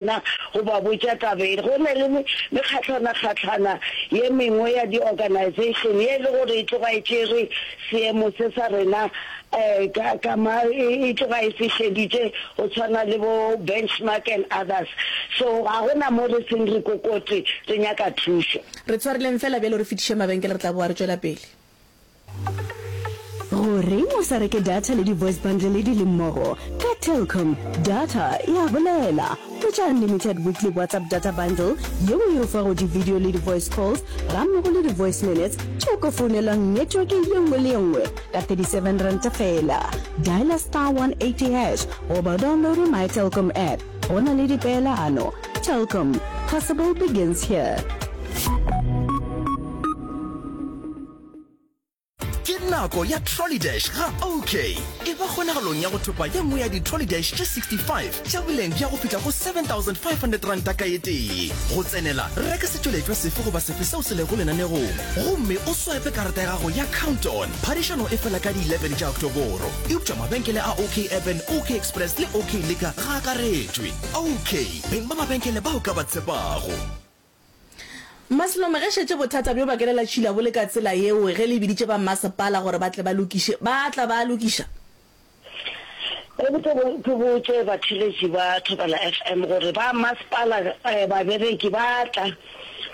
Na go ba botša taba ye? Go na le mekgatlana-kgatlana ye mengwe ya di-organization ye e le gore e tloga e tšere seemo se sa rena ka, ka ma, e tloga e se šeditše, go tshwana le bo Benchmark and others. So ga go na mo re seng re kokote re nyaka thušo. Re tshwareleng feela bjalo re fetiše mabenkele, re tla boa re tšwela pele. Goreng o sa reke data le di-voice bundle di le mmogo? Ka Telkom, data e a bolela. Hwetša unlimited weekly WhatsApp data bundle yeo e o fago di-video le di-voice calls gammogo le di-voice minutes tše o ka founelwang netweke ye nngwe le ye nngwe ka R37 feela. Dialer star 180 hash goba o downloade MyTelkom app. Go na le dipeelano. Telkom, possible begins here. ke nako ya trollydash ga ok e ba kgonagalong ya go thopa ye nngwe ya di-trollydash tše 65 tša boleng bja go fihla go 7500 ranta ka etee go tsenela reka setšweletšwa sefe goba sefe seo se lego lenanegong gomme o swipe karata ya gago ya countdown phadišano e fela ka di-11 tša oktoboro eupša mabenkele a ok urban ok express le ok leka ga akaretšwe ok beng ba mabenkele bao ka ba tshepago Maslome, ge šetše bothata bjo bakelela tšhila bo le ka tsela yeo, ge le biditše ba mmasepala gore ba tle ba lokiše, ba tla ba a lokiša? Ebile ke botše batheeletši ba Thobela FM gore ba mmasepala babereki ba tla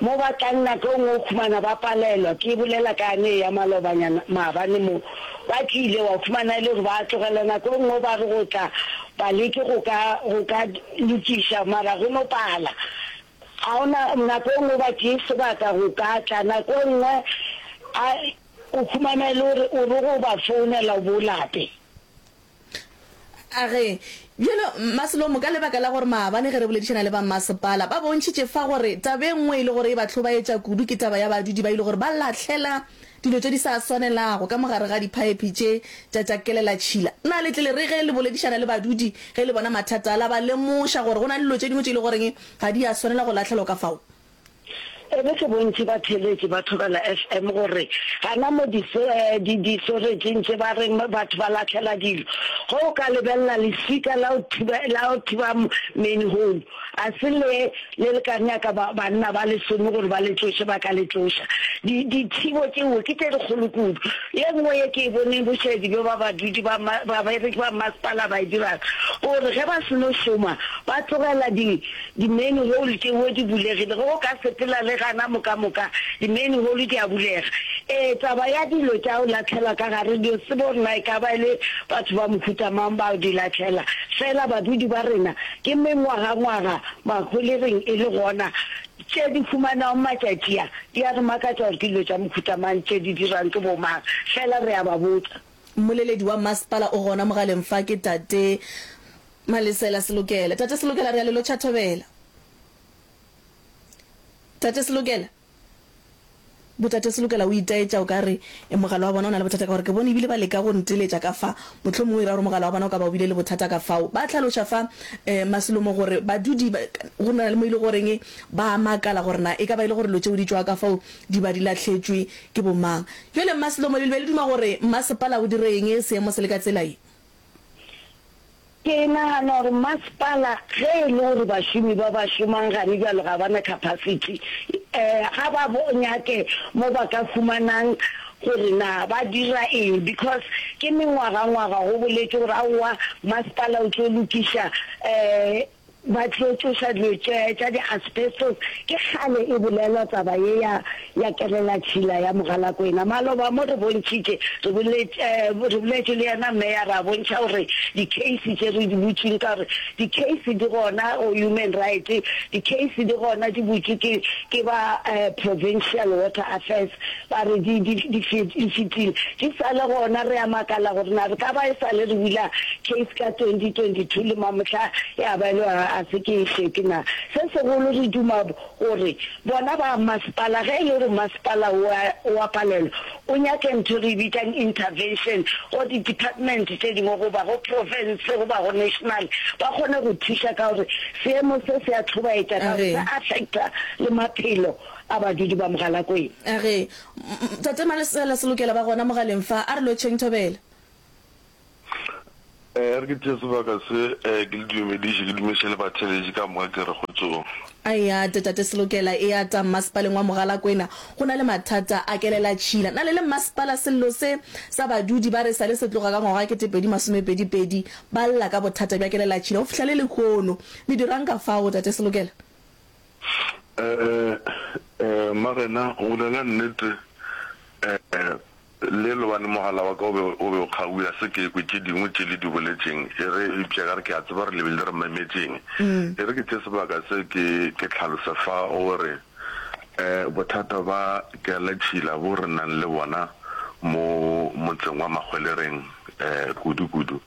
mo ba tlang nako e nngwe o humana ba palelwa ke bolela ka yane e ya malobanyana maabane mo ba tlile wa humana e le gore ba tlogela nako e nngwe ba re go tla baleki go ka go ka lokiša mara go no pala Ga go na nako e nngwe goba tee sebaka go ka tla nako e nngwe a o humana e le gore o re go ba founela o bo lape. A re, Bjalo, Mma Slomo, ka lebaka la gore maabane ge re boledišana le ba mmasepala, ba bontšhitše fa gore taba e nngwe e le gore e ba hlobaetša kudu ke taba ya badudi ba e le gore ba lahlela Dilo tše di sa swanelago ka mo gare ga diphaephe tše tša tša kelelatšhila. Na le tlile re ge le boledišana le badudi ge le bona mathata a la ba lemoša gore go na le dilo tše dingwe tše e le goreng ga di a swanela go lahlelwa ka fao? Ebe ke bontši ba theeletši ba Thobela FM gore gana mo disoretšing tše ba reng batho ba lahlela dilo, ge o ka lebelela leswika la go thiba manhole. Ga se le le le ka nyaka ba, banna ba lesome gore ba le tsoše, ba ka le tsoša. Di, dithibo tšeo ke tše dikgolo kudu. Ye nngwe ye ke e boneng bošaedi bjo ba badudi ba ma, babereki ba mmasepala ba e dirago, ke gore ge ba se no šoma, ba tlogela di, di-manhole tšeo di bulegile. Ge o ka sepela le gana mokamoka, di-manhole di a bulega. Ee, taba ya dilo tša o lahlelwa ka gare, di, tsebe gore na e ka ba e le batho ba mohuta mang bao di lahlela. Feela badudi ba rena Ke mengwagangwaga maholegeng e le gona tše di humanago matšatši a. Di a re makatša gore ke dilo tša mohuta mang tše di dirwang ke bomang, fela re a ba botsa. Mmoleledi wa mmasepala o gona mogaleng fa, ke Tate Malesela Selokela. Tate Selokela, re a le lotšha thobela. Tate Selokela? Botate Selokela o itaetša, o ka re, E, mogala wa bona o na le bothata ka gore ke bone e bile ba leka go nteletša ka fa. Mohlomongwe o ira gore mogala wa bona o ka ba o bile le bothata ka fao. Ba hlaloša fa Maselomo gore badudi ba, go na le mo e le goreng ba a makala gore na e ka ba e le gore dilo tšeo di tšwa ka fao di ba di lahletšwe ke bomang. Bjale Maselomo le be le duma gore mmasepala o dire eng ge seemo se le ka tsela ye? Ke nagana gore masepala ge e le gore bašomi ba ba šomang gane bjalo ga ba na capacity, ga ba nyake mo ba ka humanang gore na ba dira eng because ke mengwaga-ngwaga go boletšwe gore aowa masepala o tlo lokiša Ba tlo tšoša dilo tše tša di asbestos, ke kgale e bolelwa taba ye ya ya kelela tšhila ya mogalakwena. Maloba mo re bontšhitše, re boletše re boletše le yena Meya ra bontšha gore di case tše re di butšeng ka gore di case di gona go human right, di case di gona di butšwe ke ke ba provincial water affairs. Ba re di, di, di fet, di fetile. Di sa le gona, re a makala gore na re ka ba e sa le re bula case ka 2022 le mamohla ya ba e le gore ga se ke e šete na. Se segolo re duma gore bona ba masepala, ge e le gore masepala o a, o a palelwa, o nyake ntho e re e bitsang intervention go di-department tše dingwe goba go profense goba go national, ba kgone go thuša ka gore seemo se se a tlhobaetša ka gore se affecta le maphelo. a badudi ba Mogalakwena. A re, Tate Malesela Selokela ba gona mogaleng fa, a re lotšheng thobela. A re ke tšee sebaka se, ke le dumediše, ke dumiše le batheeletši ka moka, ke re kgotsong. A eya ate Tate Selokela, eya tang Mmasepaleng wa Mogalakwena, go na le mathata a kelelatšhila. Na le le Mmasepala sello se sa badudi ba re sa le se tloga ka ngwaga wa ketepedi masomepedi pedi ba lla ka bothata bja kelelatšhila go fihla le lehono. Le dirang ka fao Tate Selokela? Ee, Marena, o bolela nnete. Ee, le lobane mogala wa ka o be o be o kgaugwe, ya se ke ekwe tše dingwe tše le di boletšeng. E re, eupša ka re ke a tseba gore le be le re memetšeng. E re ke tše sebaka se ke ke tlhalose fa o re, Ee, bothata ba kealatšhila bo re nang le bona mo motseng wa Mahwelereng, ee, kudu-kudu.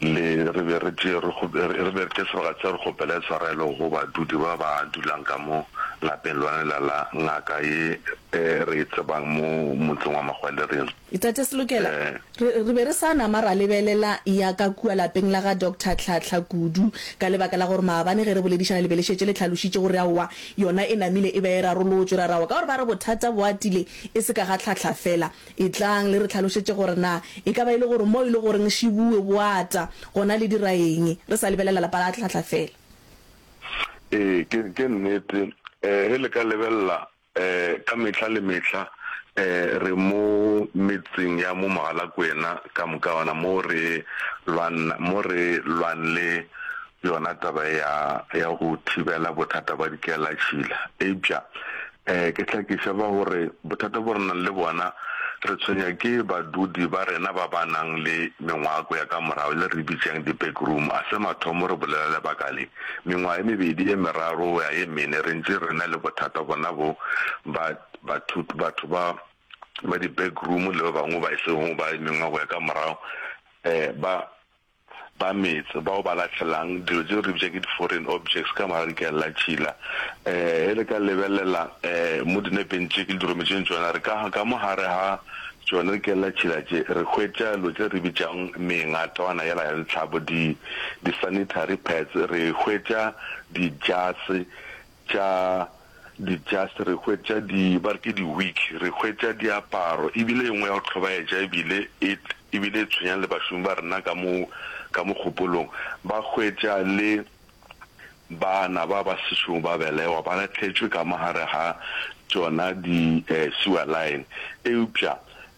Le re be re tšee, re kgo, re be re tše sebaka seo re kgopele tshwarelo go badudi ba ba dulang ka mo lapeng lona lela la ngaka ye e re e tsebang mo motseng wa Magwalering. Tate Selokela, re, re be re sa nama ra lebelela ya ka kua lapeng la ga Doctor Tlhahla kudu, ka lebaka la gore maabane ge re boledišana le be le šetše le hlalošitše gore aowa, yona e namile e be e rarolotšwe. Ra re aowa ka gore ba re bothata bo atile e se ka ga Tlhahla fela, Etlang le re tlhalošetše gore na e ka ba e le gore mo e le goreng Shibuwe Boata gona le dira eng, re sa lebelela lapa la Tlhahla fela. Ee, ke, ke nnete. Ee, ge le ka lebelela, ee, ka mehla le mehla, ee, re mo metseng ya mo Mogalakwena ka moka, gona mo re lwana, mo re lwan le yona taba ya, ya go thibela bothata bwa dikelatšhila. Eupša Ee, ke hlakiša fa gore bothata bo re nang le bona re tshwenya ke badudi ba rena ba ba nang le mengwako ya ka morago le re bitšang di-back room. A se mathomo re bolela lebaka le. Mengwaga e mebedi e meraro go ya ye mene re ntše re na le bothata bona bo, ba, bathut, batho ba, ba di-back room le ba bangwe ba e sego ba mengwako ya ka morago, ee, ba. ba metse bao ba lahlelang dilo tšeo re bitša ke di-foreign objects ka morago ke a lla tšhila. Eh, e le ka lebelela eh, mo dinepeng tše ke le dirometšeng tšona, re ka, ka mo gare ga tšone re ke lla tšhila tše, re hwetša dilo tše re bitšang mengatwana yela ya ditlhabo, di, di-sanitary pads, re hwetša dijase, tša di just re hwetša di ba re ke di wig re hwetša diaparo ebile engwe ya go tlhobaetša ebile it ebile e tshwenyang le bašomi ba rena ka mo ka mo kgopolong ba hwetša le bana ba ba sešogo ba belegwa ba latlhetšwe ka mo gare ga tšona di sewer line eupša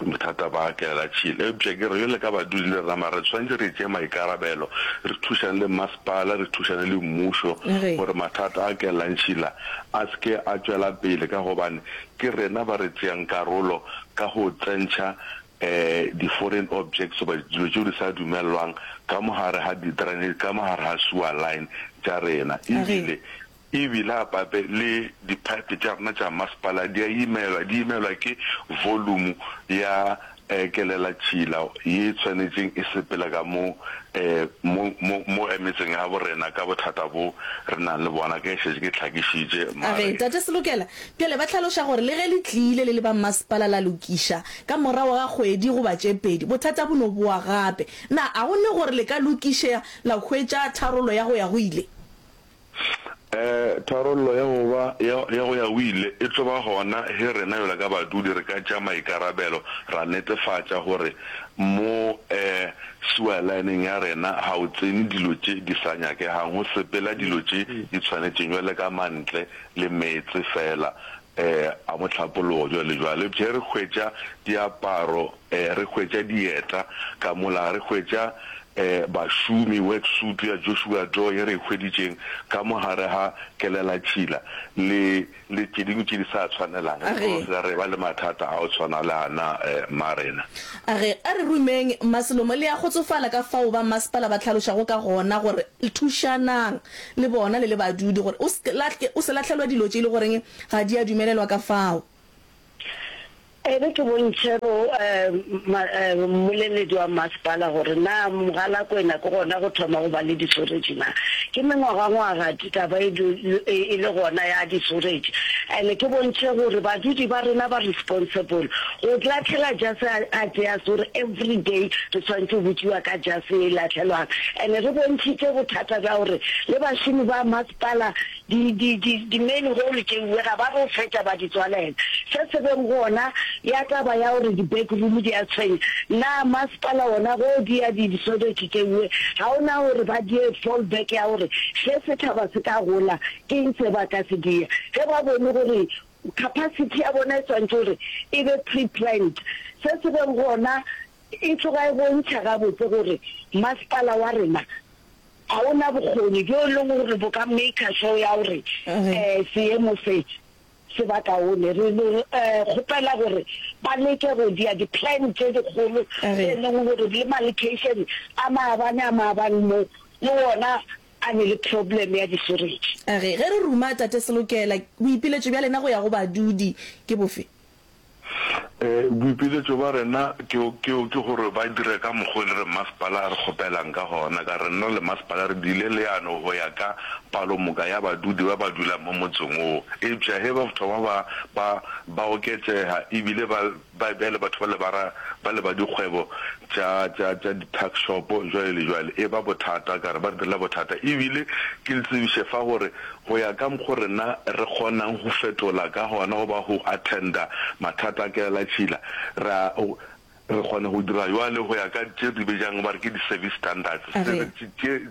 Bothata ba tlela tšhil. Eupša ke re, bjale ka badudi le rena, mara re swanetše re tšee maikarabelo, re thušane le mmasepala, re thušane le mmušo, Re. gore mathata a kellang tšhil a, a se ke a tšwela pele, ka gobane ke rena ba re tšeang karolo ka go tsentšha um di-foreign objects goba dilo tšeo di sa dumelelwang ka mo gare ga di-drainage, ka mo gare ga sewer line tša rena, A re. ebile. E bile a pape le diphaephe tša rena tša masepala di a imelwa, di imelwa ke volumu ya kelelatšhila ye e tshwanetšeng e sepele ka mo mo mo mo emetseng ya borena ka bothata bo re nang le bona ge e šetše ke hlakišitše mare. Tate Selokela bjale ba hlaloša gore le ge le tlile le le ba masepala la lokiša ka morago ga kgwedi goba tše pedi bothata bo no bowa gape. Na a go ne gore le ka lokišea la hwetša tharollo ya go ya go ile? Tharollo ya go ba ya go ya o ile e tlo ba gona ge rena bjalo ka badudi re ka tšea maikarabelo ra netefatša gore mo sewer line-eng ya rena ga o tsene dilo tše di sa nyakegang, go sepela dilo tše di tshwanetšeng bjalo ka mantle le meetse feela. Ee, a mo hlapologo bjalo le bjalo. Eupša ge re hwetša diaparo, ee, re hwetša dieta ka mola, ga re hwetša, ee, bašomi, worksuit ya Joshua Doe ye re e hweditšeng ka mo gare ga kelelatšhila, le, le tše dingwe tše di sa tshwanelang. A re. Re re ba le mathata a go tshwana le a na, ee, Marena. A re, A re rumeng, Maselomo, le a kgotsofala ka fao ba mmasepala ba hlalošago ka gona gore, Thušanang. le bona le le badudi gore o se lahle, o se lahlelwa dilo tše e le goreng ga di a dumelelwa ka fao. E re ke bontšhe bo ma, mmoleledi wa mmasepala gore na Mogalakwena ke gona go thoma go ba le disoretše na. Ke mengwagangwaga taba e le, e, e le gona ya disoretše. And-e ke bontšhe gore badudi ba rena ba responsible Go latlhela jase a a tšea sore everyday re swanetše go botšiwa ka jase ye e latlhelwang and re bontšhitše bothata bja gore le bašomi ba masepala di di di di main hole tšeuwe ga ba re o fetša ba di tswalela se se beng gona ya taba ya gore di back room di a tshwenya na masepala wona go di ya di disodetše tšeuwe ga o na gore ba die fall back ya gore ge sethaba se ka gola ke eng se ba ka se dia ge ba bone gore Capacity ya bona e swantše gore e be pre-planned, se se beng gona e tloga e bontšha gabotse gore masepala wa rena ga o na bokgoni bjo e leng gore bo ka maker sure ya gore seemo se se ba kaone. Re kgopela gore ba leke go dia di-plan tše dikgolo tše e leng gore le malocation a maabane a maabane mo le wona a ne le problem ya diferetši. A re, Ge re ruma, Tate Selokela, boipiletšo bja lena go ya go badudi ke bofe? Boipiletšo bja rena ke, ke, ke gore ba dire ka mokgwa o e le re masepala a re kgopelang ka gona. Ka re, Nna le masepala re dirile leano go ya ka palomoka ya badudi ba ba dulang mo motseng wo. Eupša ge bafta ba ba, ba, ba oketšega ebile ba Ba bjale batho bale ba ra ba le ba dikgwebo tša tša tša di tuck shop jwale le jwale e ba bothata ka re ba re direla bothata e bile ke le tsebiše fa gore go ya ka mokgo rena re kgonang go fetola ka gona go ba go attender mathata a kelela tšhila ra re kgone go dira jwale go ya ka tše re di bejang ba re ke di service standards tše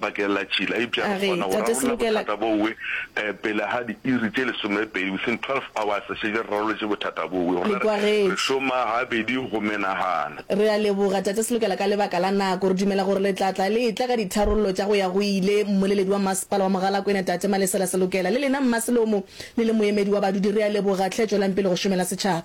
bakeng la tšila, eupša re kgona go rarolla bothata bowe pele ga diiri tše lesomepedi, within 12 hours re šetše re raroletše bothata bowe. Gona re, re šoma gabedi go menagana. Re a leboga, Tate Selokela, ka lebaka la nako. Re dumela gore le tla tla le etla ka ditharollo tša go ya go ile. Mmoleledi wa Masepala wa Mogalakwena, Tate Malesela Selokela, le lena Mma Selomo, le le moemedi wa badudi, re a leboga tlhe. Tšwelang pele go šomela setšhaba.